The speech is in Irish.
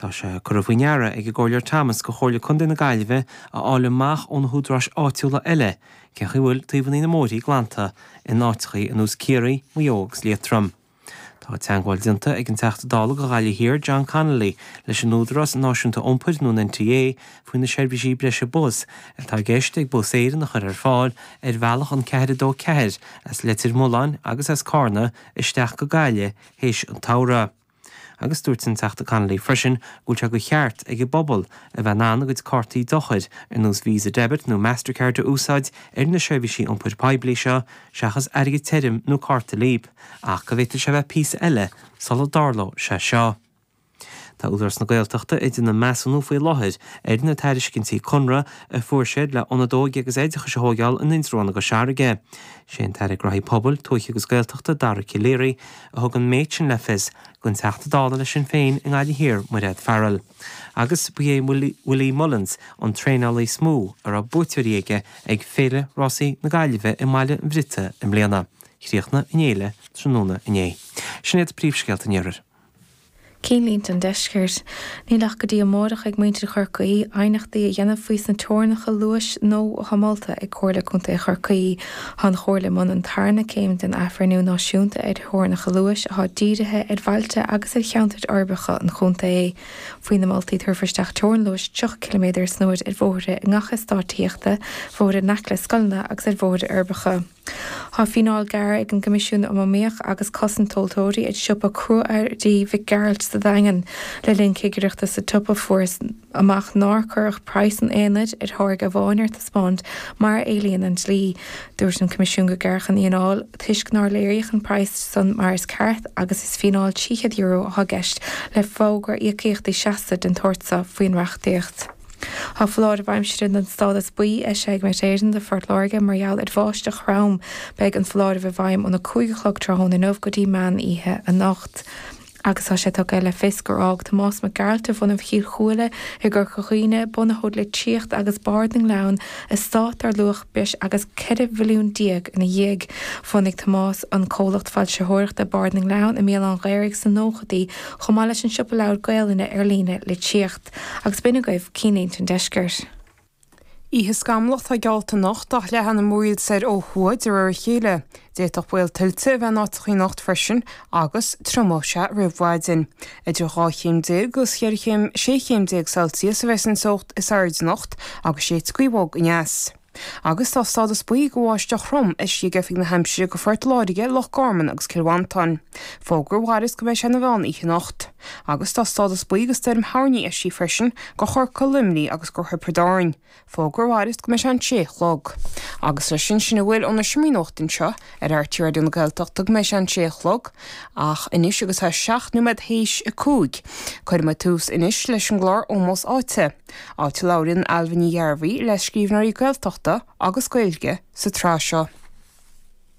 Tá sé curtha faoi deara ag an gComhairleoir Thomas do Chomhairle Contae na Gaillimhe a fháil amach ó na húdaráis áitiúla eile cé chaoi a bhfuil taobhannaí na mbóithrí glanta in áiteachaí ar nós Ciarraí, Maigh Eo agus Liatroim. Tá teangmháil déanta ag an Teachta Dála do Ghaillimh Thiar, John Connolly, leis an Údarás Náisiúnta Iompair, nó an NTA, faoi na seirbhísí breise bus atá i gceist ag Bus Éireann a chur ar fáil ar bhealach an 424 as Leitir Mealláin agus as Carna isteach go Gaillimh théis an tsamhraidh. agus dúirt an Teachta Connolly freisin go bhfuil sé de cheart ag an bpobal a bheith in ann a gcuid cártaí dochair, ar nós Visa Debit nó Mastercard, a úsáid ar na seirbhísí iompair poiblí seo, seachas airgead tirim nó cárta Leap, ach go bhféadfadh sé a bheith píosa eile sula dtarlódh sé seo. Tá Údarás na Gaeltachta ag déanamh measúnú faoi láthair ar na tairiscintí conradh a fuair siad le Ionad Óige agus Oideachais a thóigeáil in Indreabhán i gCois Fharraige. Is é an tAire Gnothaí Pobail, Tuaithe agus Gaeltachta, Dara Calleary, a thug an méid sin le fios don Teachta Dála le Sinn Féin i nGaillimh Thiar, Mairéad Farrell, agus ba é Willie Mullins an traenálaí is mó a raibh buaiteoirí aige ag Féile Rásaí na Gaillimhe i mBaile an Bhriota i mbliana. Chríochnaigh an fhéile tráthnóna inné. Sin iad príomhscéalta an iarthair. cinnlínte an deiscirt. Níl ach go dtí amárach ag muintir Chorcaí aighneachtaí a dhéanamh faoi sna teorainneacha luais nua atá molta ag Comhairle Contae Chorcaí, tá an Chomhairle i mbun an tarna céim den athbhreithniú náisiúnta ar theorainneacha luais atá dírithe ar bhailte agus ar cheantair uirbeacha an chontae. Faoi na moltaí tabharfar isteach teorainn luais 30 ciliméadar san uair ar bhóithre i ngach eastáit tithíochta, bhóithre in aice le scoileanna agus ar bhóithre uirbeacha. Tá fíneáil gearrtha ag an gCoimisiún um Iomaíocht agus Cosaint Tomhaltóirí ar shiopa Cruaearraí Mhic Gearailt sa Daingean le linn cigireachta sa tsiopa. Fuarthas amach nár cuireadh praghas an aonaid ar tháirge amháin ar taispeáint mar a éilíonn an dlí. Dúirt an Coimisiún gur gearradh an fhíneáil toisc nár léiríodh an praghas san mar is ceart agus is fíneáil €300 atá i gceist le fógra íocaíochtaí seasta den tsórt so faoin reachtaíocht. Tá foláireamh aimsire den stádas buí eisithe ag Met Éireann do Phort Láirge mar gheall ar bháisteach throm. Beidh an foláireamh i bhfeidhm óna cúig a chlog tráthnóna inniu go dtí meán oíche anocht. Agus tá sé tugtha le fios gur fhág Tomás Mac Gearailt de bhunadh Chill Chúile i gCorca Dhuibhne, bunaitheoir Litríocht agus Bard na nGleann, estát dar luach breis agus 14 mhilliún ina dhiaidh. Bhunaigh Tomás an comhlacht foilsitheoireachta Bard na nGleann i mBéal Átha an Ghaorthaidh sna nóchaidí chomh maith leis an siopa leabhar Gaelainne ar líne, Litríocht. Agus b'in agaibh cinnlínte an deiscirt. Oíche scamallach atá geallta anocht, leathfaidh na múraíl soir ó thuaidh de réir a chéile. D'fhéadfadh baol tuilte a bheith in áiteachaí anocht freisin agus triomóidh sé roimh mhaidin. Idir dhá chéim déag agus cheithre chéim, sé chéim déag Celsius a bheidh san teocht is airde anocht agus séidfidh scuabóg aneas. agus tá stádas buí do bháisteach throm eisithe ag Oifig na hAimsire do Phort Láirge, Loch Garman agus Cill Mhantáin. Fógra a mhairfeas go mbeidh sé ina mheán oíche anocht. Agus tá stádas buí do stoirm thoirní eisithe freisin do Chorcaigh, Luimneach agus do Thiobraid Árann. Fógra a mhairfeas go mbeidh sé an sé a chlog. Agus leis sin sin a bhfuil ón Seomra Nuachta anseo ar RTÉ Raidió na Gaeltachta go mbeidh sé an sé a chlog ach anois agus é seacht nóiméad tar éis a cúig, cuirfidh muid tús anois leis an gclár Ómós Áite. Áit a labhraíonn Ailbhe Ní Ghearbhuigh le scríbhneoirí Gaeltachta agus Gaeilge sa tsraith seo.